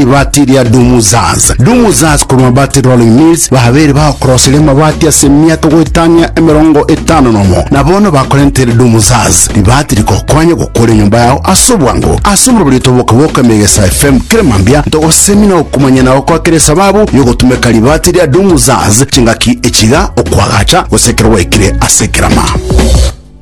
Ribaati ria Dumuzaz. Dumuzaz korwa Mabaati Rolling Mills babeire bagokorosire amabaati ase emiaka goetania emerongo etano nomo, na bono bakorentere Dumuzaz. Ribaati rikokwanye gokora enyomba yao ase obwango. Ase oborobori toboke-boke Megesa FM kera mambia ntogosemia na gokumanyia na gokoa kera esababu y'ogotumeka ribaati ria Dumuzaz chingaki echiga, okwagacha, gose ekero gwaikire ase ekerama.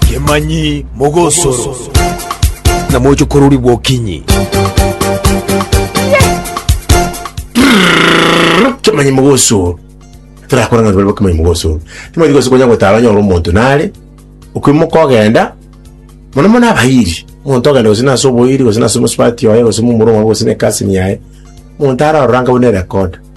Kemanyi mogosoro. Na moche korori gwokinyi. Kemanyi mogosoro. Torakora ng'a tore kemanyi mogosoro. Kemanyi mogosoro konya gotara onyore omonto nare okwimoka ogenda mono mono abairi. Omonto ogenda gose nase oboiri gose nase omosubati oye gose momura omobe gose ne cousin yaye. Omonto ararora nka buna erekoda.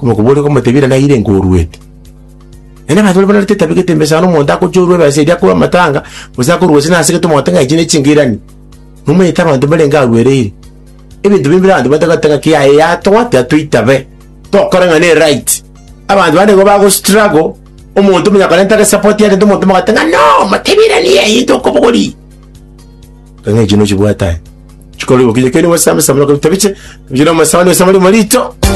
Omokubaoria akamotebia, Inee, naire nkoruete? Naende abanto baria bararete etabegete ime sana, omonto akochorwa ebesa eria akorwe amatanga, gose akorwe gose nasegete omogote ng'a echi nechinka irani. Nomanyete abanto mbarenge aruereire. Ebinto bire mbire abanto batagoteba ng'a kiaye yatoa, tiga toitabe, tokore ng'a neright. Abanto bande nigo bago struggle, omonto manya korenta gese support yarenta omonto omogote ng'a no, motebie irani eye into okobogori. Ng'a echi nochibwate aye, chikore bokinyi keene gose amisemo, otabiche, otabiche na omosabani gose amaremo rito.